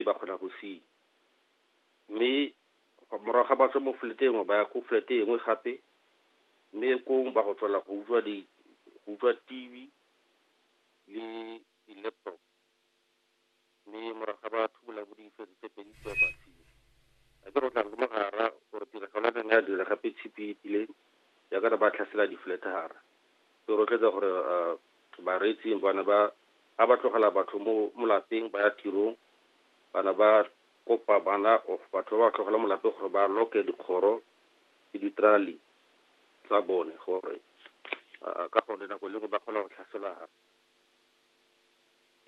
e ba kgona go se mme morago ga ba tswa mo flat engwe ba ya ko flat engwe gape mme kong ba go tswela go utlwa di go utlwa TV le di-laptop mme morago ga ba thubola bo difetse tse pedi tseo ba siwa a ke go tla le mogara gore tiragalo ya neng ya dira gape tshipi e tileng ya ka ba tlhasela di-flat hara Ke rotloetsa gore bareetsi bana ba ha ba tlogela batho mo molapeng ba ya tirong, bana ba kopa bana of batho ba ba tlogela molapeng gore ba lock-e dikgoro le di-trolley tsa bone gore ka gone nako e le nngwe ba kgona go tlhaselwa.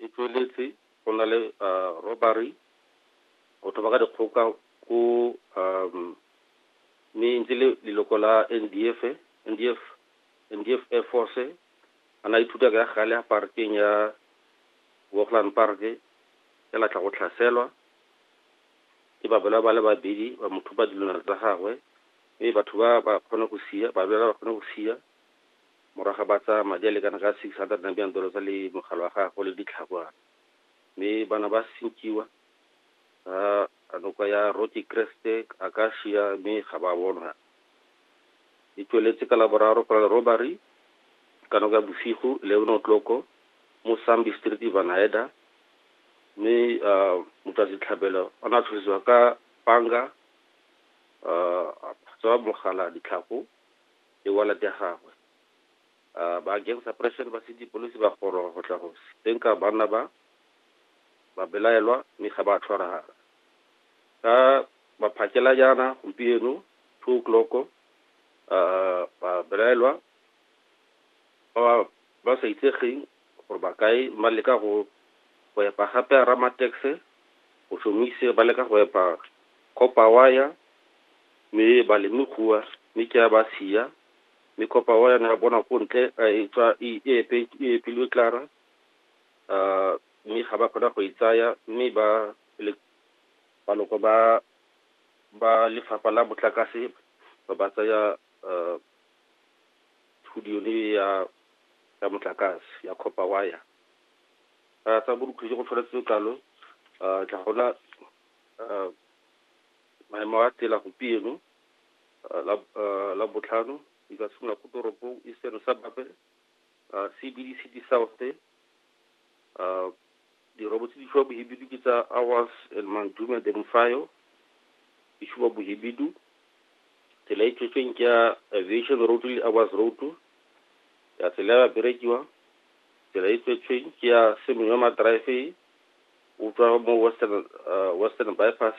E tsweletse go na le robbery, go thoba ka dikgoka ko mme e ntse le leloko la NDF, NDF, NDF Air Force. A ne a ithuta ka gale ya park-eng ya Hoogland Park, fela a tla go tlhaselwa ke babelawa ba le babedi, ba mo thuba dilwana tsa gagwe mme batho ba ba kgone go siya, babelawa ba kgone go siya. Morago ga ba tsaya madi a lekana ka 600 Namibian dollars le mogala wa gagwe le ditlhakwana mme ba na ba sinkiwa ga noka ya Rocky Crest, Acacia mme ga ba bonwa. E tsweletse ka Laboraro go na le robbery ka nako ya bosigo 11 o'clock mo Sambi Street, Vanhaeda mme motswasetlhabelo o ne a tlhosiwa ka panga, a tswa mogala, ditlhako le wallet ya gagwe. Ba Gang Suppression ba sedi police ba goroga go tla go senka banna ba, ba belaelwa mme ga ba a tshwaragala. Ka maphakela jaana gompieno, two o'clock, ba belaelwa ba ba sa itsegeng Gore ba kae ba leka go go epa gape Ramatekse, go šomise ba leka go epa Kopawaya, mme ba le mme kua, mme ke a ba siya, mme Kopawaya ne a bona ko ntle a e tswa e e epe e epilwe Klara, a mme ga ba kgona go e tsaya, mme ba le baloko ba ba lefapha la motlakase ba ba tsaya Studio e ya ya motlakase ya copper wire a tsa borukhu jo go tshwanetse kalo a tla gona maemo a tela gompieno la la botlhano di ka simolola ko toropong e seno sa bape a CBD City South uh, dirobo tse di fiwa bohibidu ke tsa awas and mandume demfayo e fiwa bohibidu tsela e tswetsweng ke ya aviation road le awas road ya tsela ya berekiwa tsela e tswetsweng ke ya semeyoma drive o tswa mo western uh, western bypass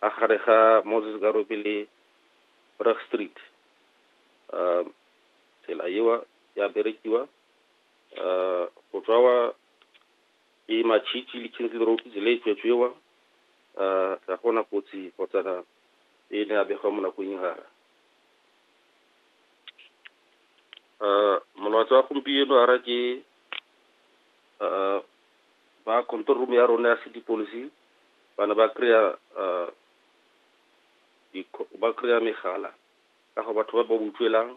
a gare ga Moses Karope le Brug Street. Um, tsela ewa ya berekiwa uh, go tswa wa e matšhitši le kinsley road tsela e tswetswewa uh, ga gona kotsi kgotsana e ne a begwa mo nakong e gara uh, molwatsi wa gompieno a ra ke uh, ba control room ya rona ya city policy ba ne ba kry-a ba kry-a megala ka go batho ba ba utlwelang